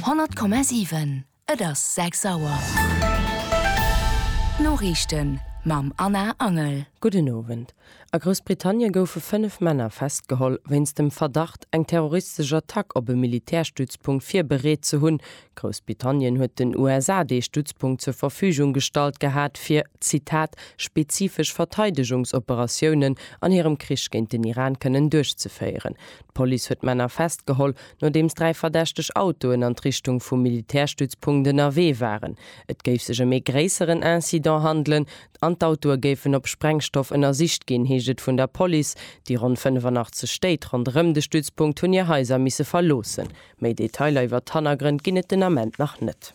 100,7 Et ass 6 Auer. D'Noriichten mam Anna Angel. Gudden Owend. A Groussbritannien goufe 5 Männer festgeholl, wéinst dem Verdacht, eng terroristesch Attack op e Militärstützpunkt virbereet ze hunn. Groussbritannien huet den USA dee Stützpunkt zur Verfügung gestallt gehat, fir, Zitat, spezifesch Verteidegungsoperatiounen an hirem Krich géint den Iran kënnen duerchzeféieren. D'Police huet d'Männer festgeholl, nodeems dräi verdächteg Autoen an d'Richtung vum Militärstützpunkt ënnerwee waren. Et géif sech ëm ee gréisseren Incident handelen an d'Autoe géifen op Sprengstoff ënnersicht ginn, heescht et vun der Police. Déi ronn 85 Stéit ronderëm de Stützpunkt hunn hir Haiser misse verloossen. Méi Detailer iwwer d'Hannergrënn ginn et den Ament nach net.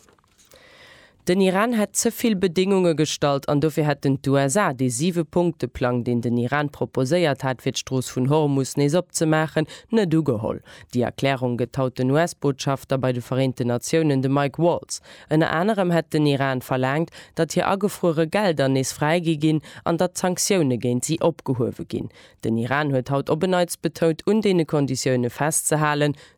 Den Iran hätt ze vill Bedéngunge gestallt an dofir hätten d'USA dee Siwe-Punkte-Plang, deen den Iran proposéiert hat, fir d'Strooss vun Hormus nees opzemaachen, net ugeholl. Déi Erklärung gëtt haut den US-Botschafter bei de Vereenten Natiounen, de Mike Waltz. Ënner anerem hätt den Iran verlaangt, datt hir agefruere Gelder nees fräigi ginn an datt d'Sanktioune géint si opgehuewe ginn. Den Iran huet haut op en Neits betount, un deene Konditioune festzehalen,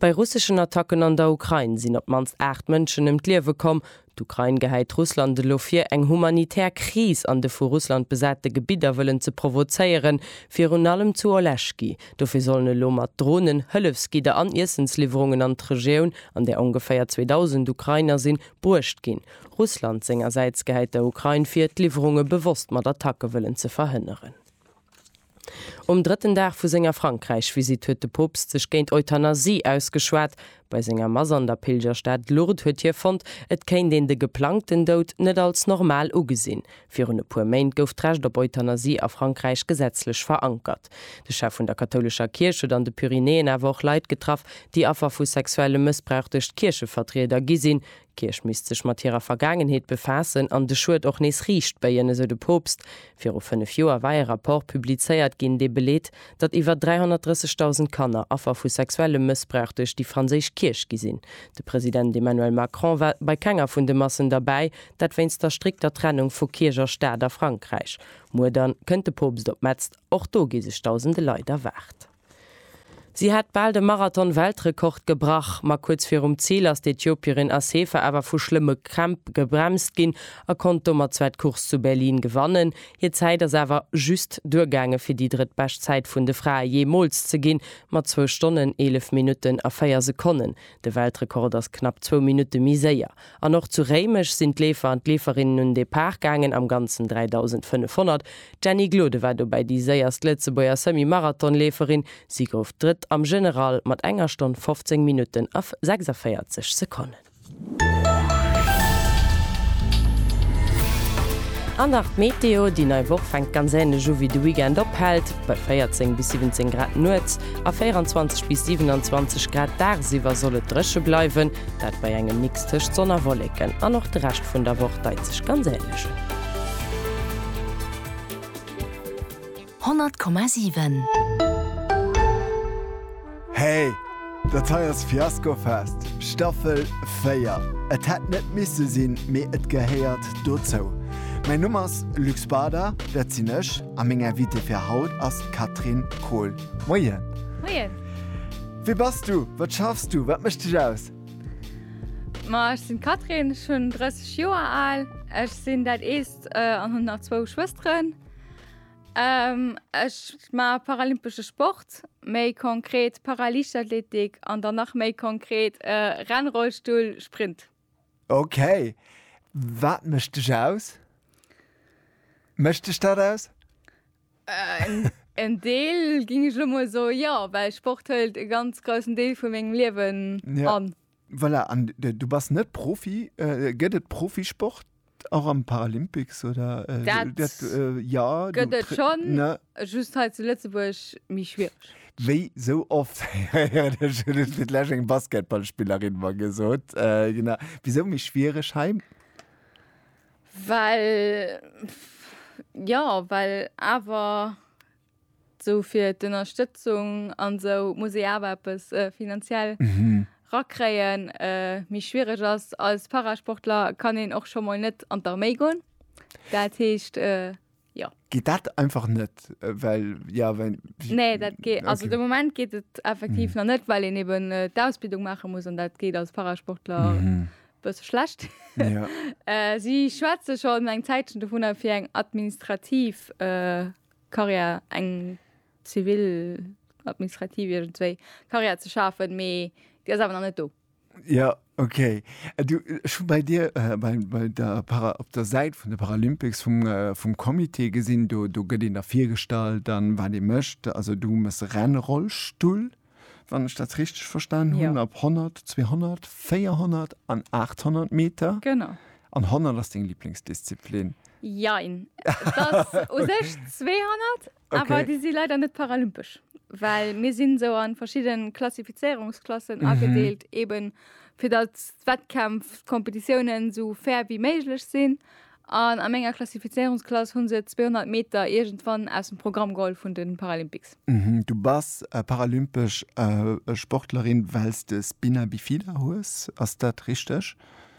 Bei russeschen Attacken an der Ukrain sinn op d'mannst 8 Mënschen ëm d'Liewe komm. D'Ukrain gehäit Russland elo vir, eng humanitär Kris an de vu Russland besate Gebidder wëllen ze provozéieren, virun allem zu Oleschky. Dofir sollen elo mat Dronen Hëllefsgidder an Iessensliwwerungen an d'Regioun, an där ongeféier 2.000 Ukrainer sinn, bruecht ginn. Russland sengersäits gehäit der Ukrain vir, d'Liwwerunge bewosst mat Attacke wëllen ze verhënneren. Um drëtten Dag vu senger Frankräich-Visitt huet de Poopst sech géint Euthanasie ausgeschwat. Bei senger Mass an der Pilgerstad Lourdes huet hie fonnt, et kéint een de geplangten Doud net als normal ugesinn. Virun e puer Méint gouf d'Recht op Euthanasie a Frankräich gesetzlech verankert. De Chef vun der kathoulescher Kierch huet an de Pyrenäen awer och Leit getraff, déi Affer vu sexuellem Mëssbrauch duerch d'Kierchevertrieder gi sinn. D'Kierch misst sech mat hirer Vergaangenheet befaassen an de Schued och nees riicht béien, esou de Poopst. Viru fënnef Joer war e Rapport publizéiert ginn, dee beleet, datt iwwer 330.000 Kanner Affer vu sexuellem Mëssbrauch duerch déi franséisch Kierch gi sinn. De President Emmanuel Macron war bei kenger vun de Massen derbäi, dat wéinst der strikter Trennung vu Kierch a Staat a Frankräich. Muer dann kënnt de Poopst op Metz, och do gi sech dausende Leit erwaart. Si hätt bal de Marathon-Weltrekord gebrach, ma kuerz virum Zil ass d'Ethiopierin Assefa awer vu schlëmme Krämp gebremst ginn a konnt domat zwar d'Course zu Berlin gewannen. Hir Zäit ass awer just duergaange fir déi drëttbescht Zäit vun de Frae jeemools ze ginn, mat zwou Stonnen, eelef Minutten a véier Sekonnen. De Weltrekord ass knapp zwou Minutte méi séier. An och zu Réimech sinn d'Leefer an d'Leeferinnen un Depart gaangen, am ganzen 3.500. D'Jenny Glode war dobäi déi séierst Lëtzebuerger Semi-Marathon-Leeferin. Si gouf Drëtt am General mat enger Stonn 15 Minutten a 46 Sekonnen. An nach d'Meteo, Déi nei Woch fänkt ganz änlech u wéi de Weekend ophält, bei 14 bis 17 Grad nuets a 24 bis 27 Grad dagsiwwer soll et dréche bleiwen. Dat bei engem Mix tëscht Sonn a Wolleken an och de Rescht vun der Woch deit sech ganz änlech. 100,7. Hey, dat hei ass Fiaskofest, Staffel 4. Et hätt net misse sinn, mee et gehéiert dozou. Mäin Numm ass Luc Spada, dat sinn ech, a meng Invitée fir haut ass d'Catherine Kohl. Moien! Moien! Wie bass du? Wat schaffs du? Wat mécht dech aus? Ma ech sinn d'Catherine, ech hunn 30 Joer al, ech sinn dat Eelst an hunn nach zwou Schwësteren. Ech maache paralympesche Sport, méi konkret Paraliichtathletik an dann nach méi konkret Rennrollstull-Sprint. Okay. Wat mécht dech aus? Mécht dech dat aus? Äh, en Deel ging ech lo mol so, jo, well Sport hëlt e ganz groussen Deel vu mengem Liewen ja. an. Voilà, an du bass net Profi. Äh, gëtt et Profisport? Och am Paralympics oder äh, dat, dat äh, ja, gëtt et schonn, ne? just hei zu Lëtzebuerg méi schwiereg. Wéi sou oft huet lech eng Basketballspillerin mer gesot, äh, genau. Wisou méi schwiereg hei? Well, ja, well awer. Sou fir d'Ënnerstëtzung an sou muss ee awer eppes finanziell rakréien. Méi schwiereg ass, als Parasportler kann een och scho mol net an d'Arméi goen. Dat heescht, jo. Geet dat einfach net, well, ja, well. Nee, dat geet, also de Moment geet et effektiv nach net, well een eben d'Ausbildung maache muss an dat geet als Parasportler e bësse schlecht. Si schwätze schonn eng Zäitchen dovunner, fir eng administrativ Carrière, eng zivil, administrativ, iergendwéi Carrière ze schafen, mee déi ass awer nach net do. Jo, okay. Du, ech hu bei dir bei der Para, op der Säit vun de Paralympics vum, vum Comité gesinn, do, do gëtt een da virgestallt an wat ee mécht. Also du méchs Rennrollstull. wann ech dat richteg verstan hunn, ja. op 100, 200, 400 an 800 Meter. Genau. An 100 ass deng Lieblingsdisziplin? Jein. Das u sech 200, okay. awer déi si leider net paralympesch. Well mir sinn sou an verschidden Klassifizierungsklassen mhm. agedeelt, eben fir dat Wettkämpf, Kompetitiounen sou fair wie méiglech sinn. An a menger Klassifizéierungsklass hu se d'Zweehonnert Meter iergendwann aus dem Programm geholl vun de Paralympics. Du bass paralympesch Sportlerin, well s de Spina Bifida hues. Ass dat richteg?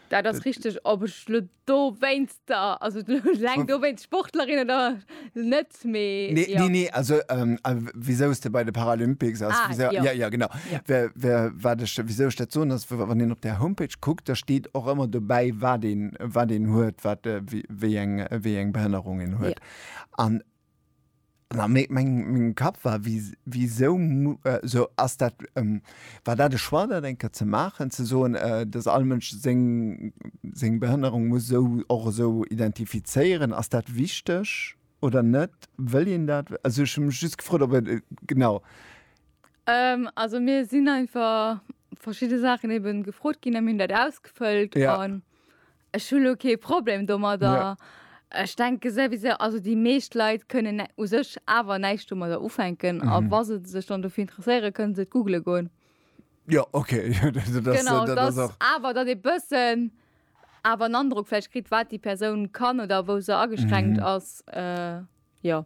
Dat ass richteg. Ob ech elo dowéinst, also eleng dowéinst Sportlerin oder net, net mee nee, ja. nee, nee, also ähm, äh, wieso ist der bei de Paralympics ass ah, wieso, ja. Ja, ja genau ja. Wer, wer, wat ich, wieso ich dat so ass wann den op der Homepage guckt da steht och ëmmer dobäi wat den wat den huet wat äh, wéi eng wéi eng Behënnerung en huet an ja. meng Kap war wie wieso äh, so ass dat ähm, war dat de Schwar dat enker ze machen ze so äh, dass all Mënsch seng seng Behënnerung muss so och so identifizéieren ass dat wichteg? Oder net? Wëll een dat? Also ech hu mech just gefrot op et genau. Also mir sinn einfach verschidde Saachen ebe gefrot ginn a mir hunn dat ausgefëllt. Ja. An ech hu lo kee Problem domadder. Ja. Ech denke souwisou, also déi meescht Leit kënnen nä- u sech awer näischt domadder ufänken. A wa se sech dann dofir interesséieren, kënnen se et googele goen. Ja, okay. Dat ass, Genau, dat ass dass och. awer dat ee bëssen awer en Androck vläicht kritt, wat déi Persoun kann oder wou se ageschränkt ass. Jo.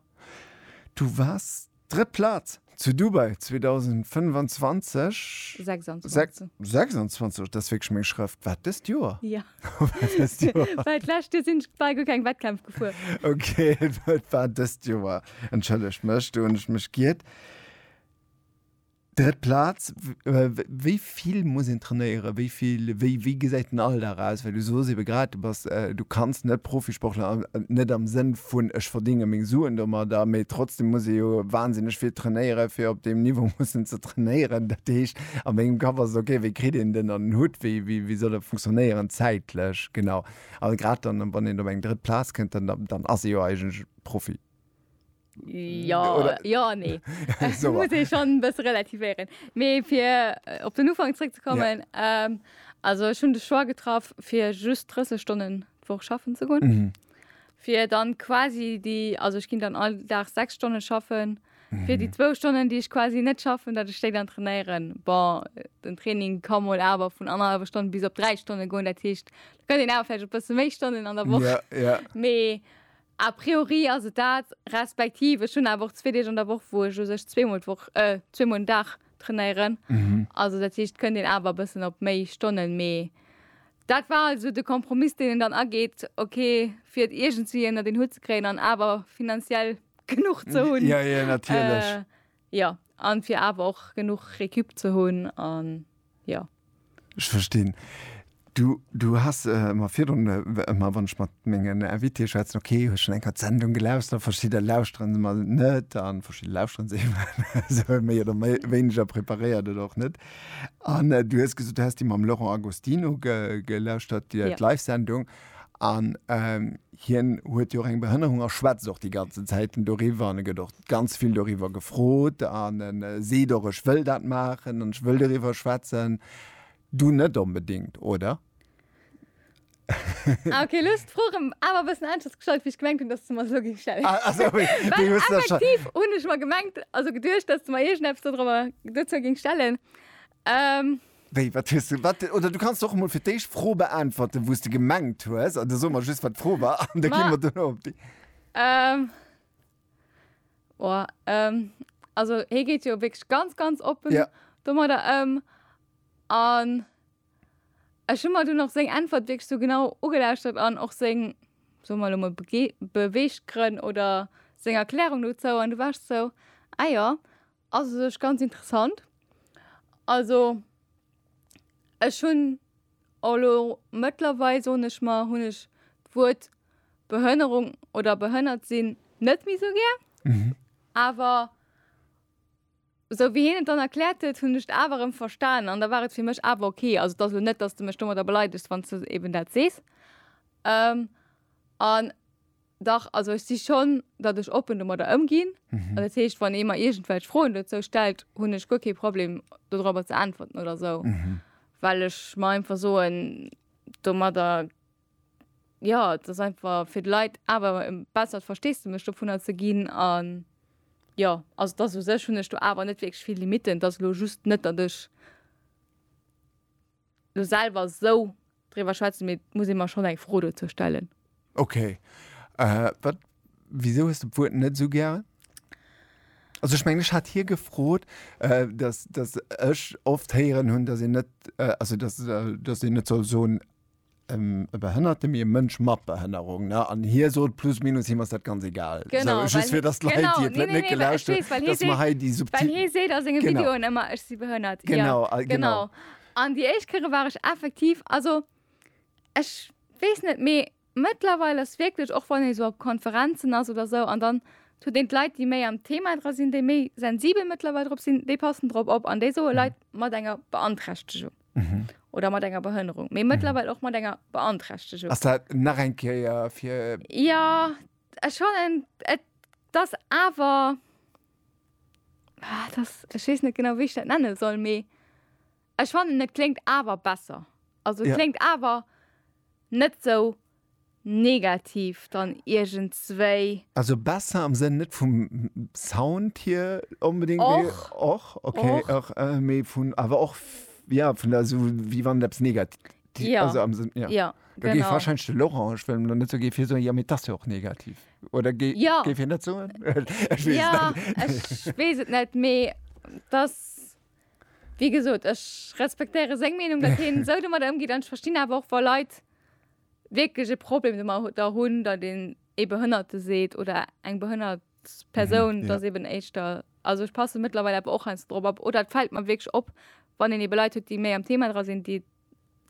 Du waars drëtt Plaz zu Dubai 2025. 26. 26, dat ass wierklech meng Schrëft. War et dëst Joer? Jo. War dëst Joer. Well d'lescht Joer sinn ech bal guer keng Wettkämpf gefuer. Ok, et war dëst Joer. Entschëllegt mech, do hunn ech mech giert. Drëtt Plaz, wéi vill muss een trainéieren, wéi vill, wéi wéi gesäit den Alldag aus? Well du soos ebe grad, du bass, du kanns net Profisportler, net am Sënn vun ech verdénge meng Suen domadder, mee trotzdem muss ee jo wahnsinneg vill trainéieren, fir op deem Niveau mussen ze trainéieren. Dat heescht a mengem Kapp ass et ok, wéi kritt een den an den Hutt, wéi wéi wéi soll e funktionéieren zäitlech genau? A grad dann, wann een op eng drëtt Plaz kënnt, dann dann ass ee jo eigentlech Profi. Ja, Oder, ja an nee. so, muss ich schon bis relativieren. Mir fir äh, op den Ufang zurückzukommen, ja. ähm, also schon de Schwar getraff fir just 30 Stunden woch schaffen zu gun. Mhm. Fir dann quasi die also ich ging dann all Tag sechs Stunden schaffen. Mhm. Fir die zwo Stunden, die ich quasi net schaffen, dat ste dann trainieren. Bon den Training kann mol awer vun anerhalber Stunde bis op drei Stunden goen, dat hicht gëtt den awer op bis méi Stunden an der Woche. Ja, ja. Mee, A priori ass et dat, respektiv ech hunn awer och zwee Deeg an der Woch, wou ech u sech zweemol d'Woch, zweemol den Dag trainéieren. Also dat heescht, kënnt een awer e bëssen op méi Stonnen. Mee dat war also de Kompromiss, deen een dann ageet, okay, fir et iergendwéi ënnert een Hutt ze kréien an awer finanziell genuch ze hunn. Jo, an fir awer och genuch Récup ze hunn an jo. Ech verstinn. Du, du has mer virdrun ëmmer, wann ech mat mengen Invitéë schwätzen, ok, hu schonn eng Kéier d'Sendung gelauschtert, verschidder lauschteren se emol net an verschidder lauschteren se esou méi oder méi wéineger preparéiert oder och net. An du hues gesot, du häss déi mam Laurent Agostino ge, gelauschtert, déi, déi Live-Sendung an, Hien huet jo och eng Behënnerung a schwätzt och déi ganzen Zäiten doriwwer an e gëtt och ganz vill doriwwer gefrot an e seet och, ech wëll dat maachen an ech wëll doriwwer schwätzen. Du net onbedéngt, oder? Ah okay, elo hues d'Fro rëm awer e bëssen aneschters gestallt, wéi ech gemengt hunn, datt s du mer se elo géings stellen. Ah ah sorry, well effektiv hunn ech mer gemengt, also geduecht, datt s du mer iergendeppes dodrëwer dozou géings stellen. Ähm. Wéi, wat hues du, wat, oder du kanns och emol fir d'éischt d'Fro beäntwerten, wou s de gemengt hues, an da soe mer just, wat d'Fro war, an da gi mer duerno op déi. Ähm. Oh, ähm, also hie geet jo wierklech ganz, ganz oppen. Ja. Domadder ëm. An ech hu mer dunn och seng Äntwert wierklech sou genau ugelauschtert an och seng, soe mer elo emol, Bege, Beweeggrënn oder seng Erklärung dozou. An du war ech sou, Ah jo. Ass u sech ganz interessant. Also ech hunn elo mëttlerweil, soen ech mer, hunn ech d'Wuert Behënnerung oder behënnert sinn net méi esou gär. Awer esou wéi hien et dann erkläert huet, hunn ech et awer erëm verstanen an da war et fir mech awer ok. Also et ass elo net, datt s de mech domadder beleidegst, wann s de eben dat sees. An Dach, also ech si schonn, datt ech oppen domadder ëmginn. Dat heescht, wann ee mer iergendwelch Froen dozou stellt, hunn ech guer kee Problem dodrobber ze äntwerten oder esou, well ech mer einfach soen, domadder, jo, et ass einfach fir d'Leit awer e bessert Versteesdemech dovunner ze ginn. A jo, also et ass u sech, hunn ech do awer net wierklech vill Limitten. Et ass elo just net, datt ech. Lo selwer esou driwwer schwätzen, mee et muss ee mer schonn eng Fro dozou stellen. Ok. Wat, wisou hues de d'Wuert net esou gären? Also ech mengen, ech hat hie gefrot, dass, dass ech oft héieren hunn, dass een net, also dass, dass een net soll soen ëm e Behënnerte mee e Mënsch mat Behënnerung ne an hie sot plus minus him ass dat ganz egal genau, so, just fir dass d'Leit genau, déi net nee, gelauscht nee, nee, dass hei déi subtil hie seet a senge Videoen ëmmer ech si behënnert genau, ja, genau. genau. An déi éischt Kéiere war ech effektiv also ech weess net mee mëttlerweil ass wierklech och wann ee sou op Konferenzen ass oder sou an dann huet een d'Leit déi méi am Thema dra sinn déi méi sensibel mëttlerweil drop sinn déi passen drop op an déi soe Leit mat enger Beanträchtegung. Mhm. oder mat enger Behënnerung, mee mëttlerweil och mat enger Beanträchtegung. Ass dat nach eng Kéier fir Ja, ech fannen et das awer ah, das ech weess net genau wéi ich dat nenne soll, mee ech fannen et kléngt awer besser. Also Ja. kléngt awer net sou Negativ dann iergendswéi. Also besser am Sënn net vum Sound hier onbedéngt, mee. Och. Och? Ok. Och. Och, mee vun, awer och, jo, vun der, esou wéi wann et eppes Negativ, Ja. also am Sënn, jo. Jo, genau. Da géif warscheinlech de Laurent, ech wëll elo net sou, géif hie soen, jo, mee et ass jo och negativ, oder géi, Jo. géif hien dat soen? Ech weess et net. Jo, ech weess et net, mee et ass. Wéi gesot, ech respektéiere seng Meenung, datt hien esou domadder ëmgeet an ech verstinn awer och, wa Leit wierklech e Problem domadder hunn, datt een ee Behënnerte seet oder eng behënnert Persoun, datt eeben éischter, also ech passe mëttlerweil awer och heiansdo drop op oder et fält mer wierklech op, wann een eebe Leit huet, déi méi am Thema dra sinn, déi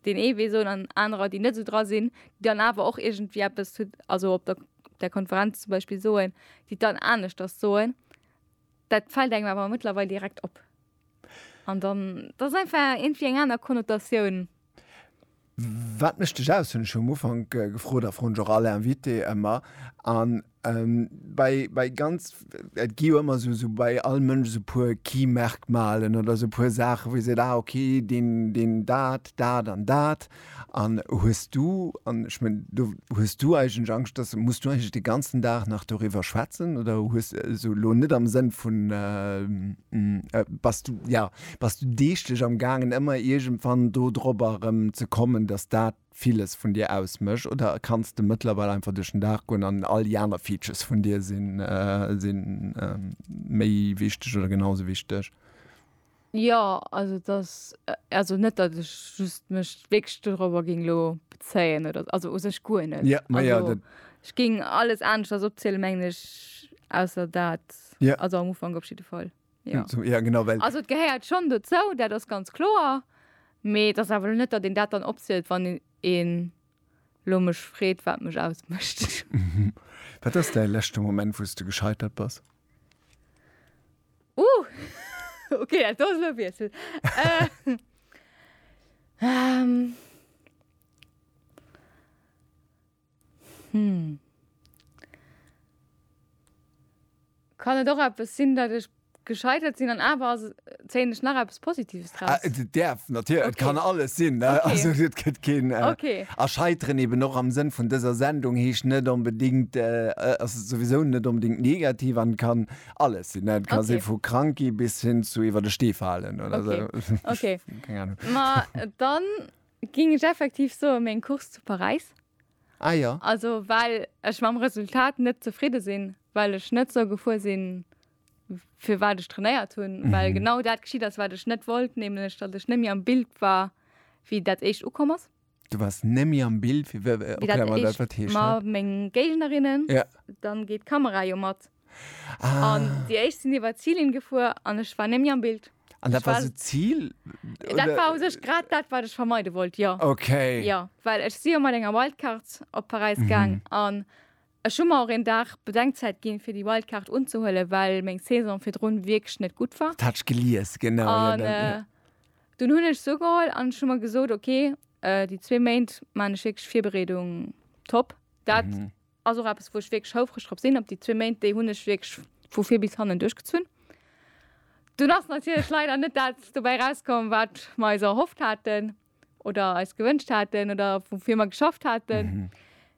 deen ee Wee soen an anerer, déi net esou dra sinn, déi dann awer och iergendwéi eppes zu, also op der Konferenz zum Beispill soen, déi et dann aneschters soen. Dat fällt engem awer mëttlerweil direkt op. An dann, dat ass einfach iergendwéi eng aner Konnotatioun. Wat mécht dech aus, hunn ech jo am Ufank gefrot a froen ech och all Invité ëmmer. An bei, bei ganz, et gi jo ëmmer esou, esou bei all Mënsch esou e puer Key-Merkmalen oder esou e puer Saachen, wou ee seet, ah okay, deen, deen dat, dat an dat. An hues du, an ech mengen, do hues du eigentlech Angscht, dass, muss du eigentlech de ganzen Dag nach doriwwer schwätzen oder hues, also elo net am Sënn vun, bass du, jo, bass du deeglech am gaangen ëmmer iergendwann do drop erëm ze kommen, dass dat villes vun dir ausmécht oder kanns de mëttlerweil einfach duerch den Dag goen an all déi aner Features vun dir si méi wichteg oder genau esou wichteg? Jo, also dass, also net dat ech just mech wierklech dorobber géing elo bezéien oder, also u sech guer net. Ja, ma ja, dat. Ech géing alles aneschters opzielen, mengen ech, ausser dat. Ja. Also am Ufank op jidde Fall, jo. Ja, genau, well. Also et gehéiert schonn dozou, dat ass ganz kloer, mee et ass awer elo net, datt een dat dann opzielt, wann een elo mech freet, wat mech ausmécht. Wat ass däi leschte Moment, wou s de gescheitert bass? Uh, okay, dat ass elo Wiessel. äh, ähm. Hm. Kann et och eppes sinn, dat ech gescheitert sinn an awer ass, zéien ech nach eppes Positives draus. Ah, et därf, natürlich, okay. et kann alles sinn. Ne? Okay. Also, et gëtt keen. Äh, okay. A scheiteren eben och am Sinn vun dëser Sendung heescht net unbedingt, äh, äh also sowieso net unbedingt negativ an kann alles sinn. Et kann okay. sinn vu Kranki bis hin zu iwwer de Stee fallen oder okay. so. Okay. Keine Ahnung. Ma dann ging ich effektiv so um en Kurs zu Paris. Ah ja. Also, weil ich mam Resultat net zufrieden sinn, weil ich net so gefuer sinn. fir wat ech trainéiert hunn, mhm. well genau dat geschieet ass wat ech net wollt, nämlech dat ech nemmi am Bild war wie dat echt ukom ass. Du warst nemmi am Bild fir äh, okay, mat meng Gegnerinnen ja. dann geet Kamera jo mat. Ah. An Di eich sinn iwwer Zielin gefuer an ech war nemmi am Bild. An dat war se Ziel? Dat war sech grad dat wat ech vermeide wollt ja. Okay. Ja, Well ech si mat enger Wildcard op Paris mhm. gang an Ech hu mer och een Dag Bedenkzäit ginn, fir déi Wildcard unzehuelen, well meng Saison virdrun wierklech net gutt war. Dat hat ech gelies, genau. An dunn hunn ech se ugeholl an ech hu mer gesot, ok, déi zwee Méint maachen ech wierklech Virbereedung top. Dat ass och eppes, wou ech wierklech houfreg drop sinn, op déi zwee Méint. Déi hunn ech wierklech vu vir bis hannen duerchgezunn. Dunn ass natierlech leider net dat dobäi erauskomm, wat mer eis erhofft haten. oder eis gewünscht hatten oder wofür wir geschafft hatten. Mhm.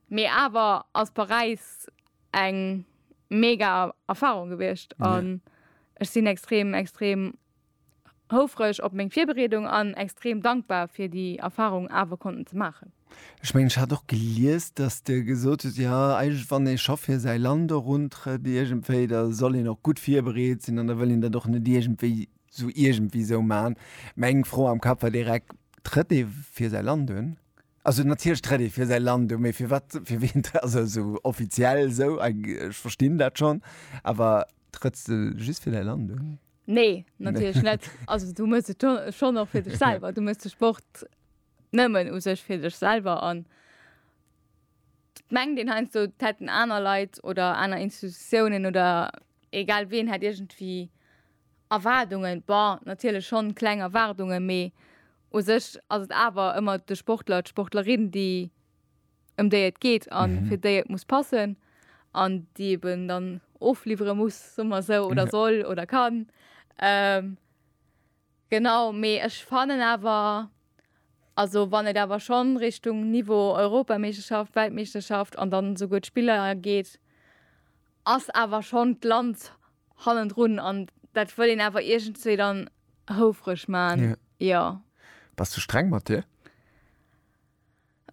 Mee awer ass Paräis eng mega Erfahrung gewiescht an ech sinn extrem extrem houfreg op meng Virbereedung an extrem dankbar fir déi Erfahrung awer konnten ze maachen. Ech mengen ech hat och gelies, datt de gesot huet, ja eigentlech wann ee scho fir säi Land eruntrëtt iergendwéi, da soll een och gutt virbereet sinn an da wëll een dat och net iergendwéi Sou iergendwéi sou man. Meng Fro am Kapp war direkt, trëtt ee fir säi Land un? Also natierlech trëtt ee fir säi Land un, mee fir wat, fir wien, also sou offiziell esou, ech verstinn dat schonn, awer trëtts de just fir däi Land un? Nee, natierlech net. Also du méchs et schonn och fir dech selwer. Du méchs de Sport nëmmen u sech fir dech selwer an d'Gemeng, deen heiansdo, d'hätten aner Leit oder aner Institutiounen oder egal wien hätt iergendwéi, Erwaardungen, bon, natierlech schonn kleng Erwaardungen, mee u sech ass et awer ëmmer de Sportler, d'Sportlerin, déi, ëm déi et geet a fir déi et muss passen an déi eben dann ofliwwere muss, soe mer esou, oder soll oder kann. Genau, mee ech fannen awer, also wann et awer schonn Richtung Niveau Europameeschterschaft, Weltmeeschterschaft an dann esouguer d'Spiller geet, ass awer schonn d'Land hannendrun an dat wëll een awer iergendzwee dann houfreg man, jo. Bass de streng mat dir?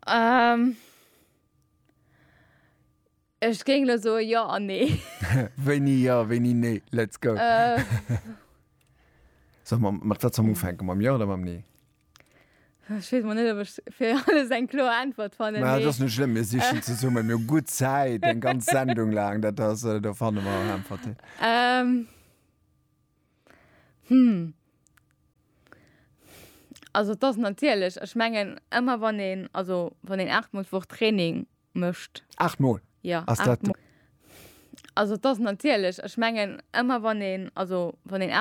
Ehm, ech géing elo soe jo an nee. Wéini jo, wéini nee? Let's go! Solle mer mat wat zum ufänken, mam jo oder mam nee? Ech wees mol net op ech fir alles eng kloer Äntwert fannen. Mä et ass net schlëmm, mir sichen zesummen, mir hu gutt Zäit, eng ganz Sendung laang, dat ass, do fanne mer och Äntwerten. Ähm. Hm. Also et ass natierlech, ech mengen ëmmer wann een, also wann een 8 mol d'Woch Training mécht. 8 mol? Jo, 8 mol. Also et ass natierlech, ech mengen ëmmer wann een, also wann een.